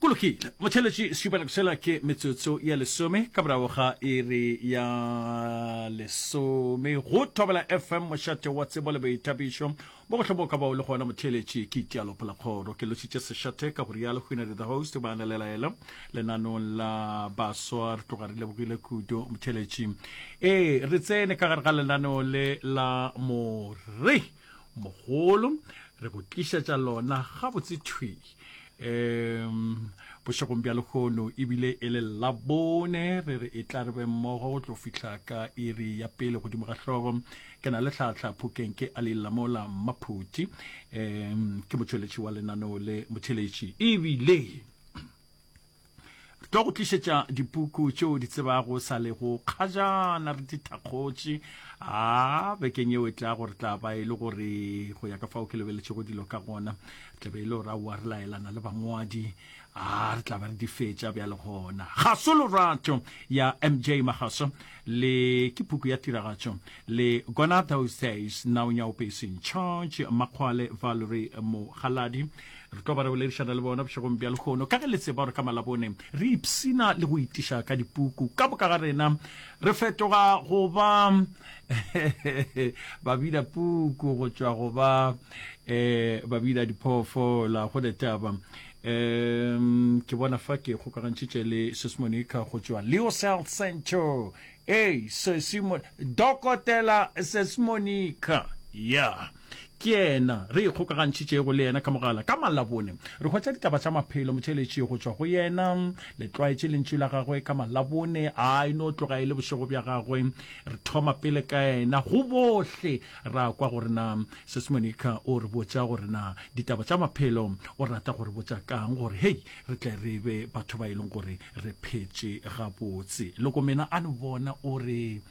Go lokile, Mothelesi Schuberg, sela ke metsotso ya lesome ka morago ga iri ya lesome go Thobela FM, mošate wa tsebo le boithabišo. Mo go hloboka bao le gona, Mothelesi, ke Italo Pelakgoro. Ke lošitše sešate ka go rialo Hwinere the Host, ba na le laela lenanong la baswa. Re tloga re lebogile kudu, Mothelesi. Ee, re tsene ka gare ga lenaneo le la more. mogolo re go tlišetša lona gabotse thwi um bošegong bja lekgono ebile e le labone re re e tla re be mmogo go tlo fihla ka iri ya pele godimo ga hlogo ke na le tlhatlha phokeng ke a lelamola mmaphuti um ke motšweletši wa lenaneo le motheletši ebile Re tlo go tlišetša dipuku tšeo di tsebago sa le go kgajana re di thakgotše a bekeng yeo e tla gore tla ba e le gore go ya ka fao ke lebeletšego dilo ka gona re tla be e le gore aowa re laelana le bangwadi a re tla ba re di fetša bja le gona ga so lorato ya mj magaso le ke puku ya tiragatšo le gona those days now nyaopeseng charge makgwale valery mogaladi re tlo ba re boledišana le bona bošegong bja lehono ka ge le tseba gore ka malabone re ipsina le go itiša ka dipuku ka boka ga rena re fetoga go ba babina puku go tšwa go ba um babina diphoofola go letaba um ke bona fa ke kgokagantšhitše le sesmonica go tšwa leo cell central ee sesimo dokotela sesmonica ya yeah. Ke yena re ikgokagantšhitšego le yena ka mogala ka Malabone. Re hwetša ditaba tša maphelo motšheletši go tšwa go yena. Le tlwaetše lentšu la gagwe ka Malabone, a e no tloga e le bošego bja gagwe. Re thoma pele ka yena go bohle. Ra kwa gore na Sis Monica o re botša gore na ditaba tša maphelo o rata go re botša ka'ng gore hei re tle re be batho ba e leng gore re phetše gabotse. Lokomena a no bona o re.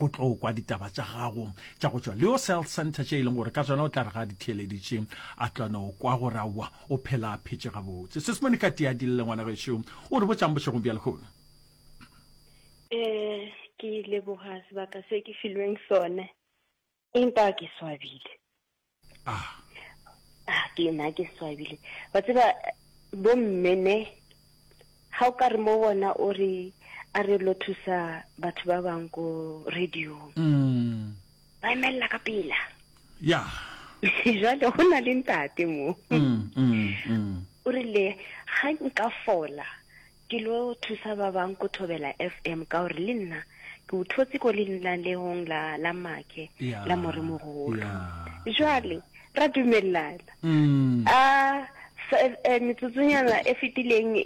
o tlo kwa ditaba tša gago tša go tšwa leo cell center tše e leng gore ka tsona o tla re ga di theeleditše a tlwana o kwa gore aowa o phela a phetše gabotse sesemone ka tea dilele ngwana gešo o re botšang bošegong bja lehono um ke leboga sebaka se ke filweng sone empa ke swabile ah ah ke na ke swabile wa tseba bo mmene ga o ka re mo bona o re a re lo thusa batho ba bang ko radio mm. ba emelela ka pela ya jale go na le ntate mo mm, mm, mm. o rile ga nka fola Ke lo thusa ba bang ko Thobela FM ka gore le nna ke o thotse ko lenanehong la la make Ya, la moremogolo. ya. Jwale ra dumelana. Mm. A sa- eh, metsotsonyana e fetileng